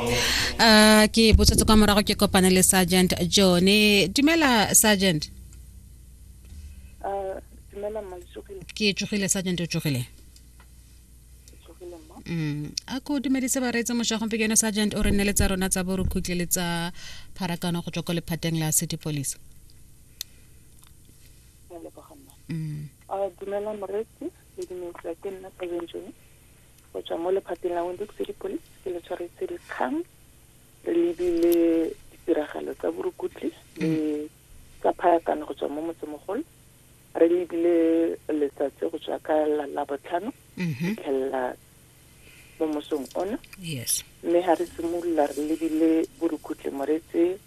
uh, ke botsetse kwa morago ke kopane le sergeant jone dumela sergeant uh, dumela ke tsogile sergeant o tsogile mm. a ko dumedise ba reetse moša gompe ke yone sergeant o re nne le tsa rona tsa borukhutle le tsa pharakano go tswa ko lephateng la city police mm. uh, dumela moreetsi le dumedisa ke nna sergeant jone go tswa mo lephateng la Windhoek City Police ke le tshwaretse dikgang re lebile ditiragalo tsa borukutli le tsa phayakano go tswa mo motsemogolo re lebile letsatsi go tswa ka la labotlhano mhm. fitlhelela mo mosong ona mme ga re simolola re lebile borukhutle moretse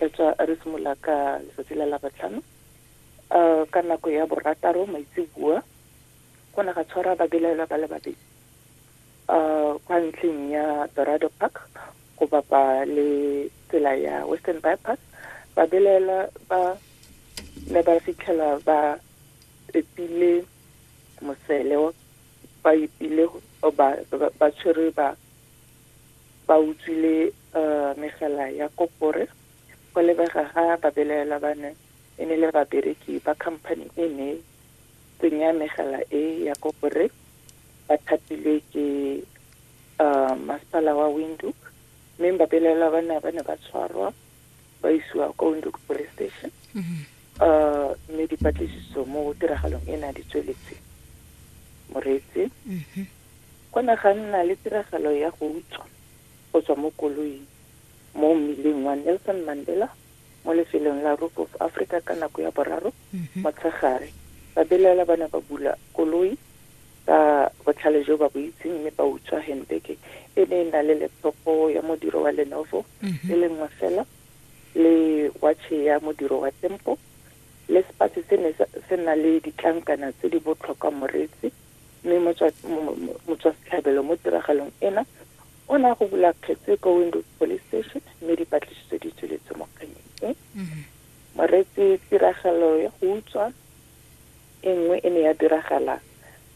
re tswa re simolola ka letsatsi la labotlhano um ka nako ya borataro maitsebua go ne ga tshwara babelaelwa ba le babedi um kwa ntlheng ya dorado park go bapa le tsela ya western bypass babelaelwa ba ne ba fitlhela ba epile mosele ba epile ba tshwere ba ba utswile um megala ya kopore go lebega ga babelaelwa ba ne e ne le babereki ba company e ne Tsenya megala e ya koporate ba thapilwe ke um masepala wa windhoek mme ba belaelwa ba ne ba ne ba tshwarwa ba isiwa kwa windhoek police station um mme dipatlisiso mo tiragalong e na di tsweletse moreetsi go ne ga nna le tiragalo ya go utswa go tswa mo koloing mo mmileng wa nelson mandela mo lefelong la Roop of Africa ka nako ya boraro motshegare. Babelaela ba ne ba bula koloi ka botlhale jo ba bo itseng mme ba utswa handbag e ne e na le laptop ya modiro wa Lenovo e le nngwe fela le watšhe ya modiro wa Tempo le sepatsi se ne se na le ditlankana tse di botlhokwa moreetsi mme motswasetlhabelo mo tiragalong ena O ne a go bula kgetse ko Windhoek Police Station mme dipatlisiso di tsweletse mo kgannyeng e. Moreetsi tiragalo ya go utswa e nngwe e ne ya diragala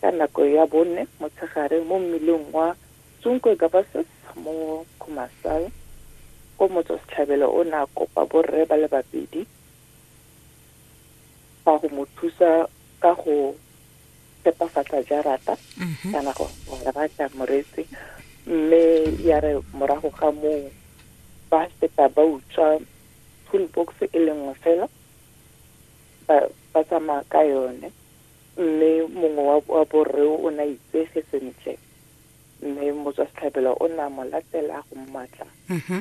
ka nako ya bone motshegare mo mmileng wa Tsunkwe Gabasis mo Khumasal ko motswasetlhabelo o ne a kopa borre ba le babedi ba go mo thusa ka go phepafatsa jarata mhm. kana go rata moreetsi mme ya re morago ga moo ba feta ba utswa toolbox e le nngwe fela ba tsamaya ka yone mme mongwe wa borre o ne a itsege sentle mme motswa setlhabelo o ne a mo latela go mmatla mhm.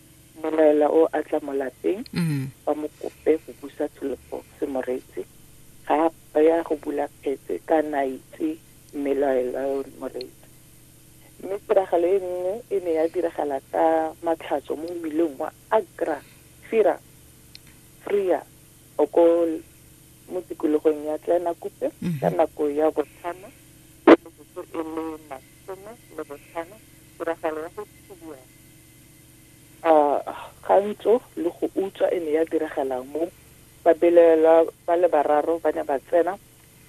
Mmelaela o a tla mo lapeng ba mo kope go busa Tsholofo Semoretsi. Ga a ya go bula kgetse ka ne a itse mmelaela yo Moretsi. Mme tiragalo e nngwe e ne ya diragala ka Matlhatso mo mmileng wa Agra, Fira, Freer o ko mo tikologong ya Kleinakupe ka nako ya botlhano ya metsotso e le masome le botlhano, tiragalo ya go thubiwa. A kgantso le go utswa e ne ya diragalang mo? Babelaelwa ba le bararo ba ne ba tsena,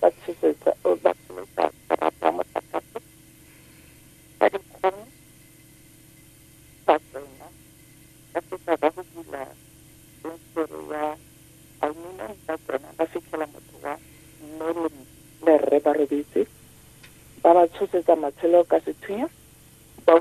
ba tshosetsa, ba tsholosa karata ya motlakase ka dikgong, ba tsena, ba fetsa ba go bula fensetere ya aluminum, ba tsena, ba fitlhela motho wa Merlin le rre ba robetse, ba ba tshosetsa matshelo ka sethunya, ba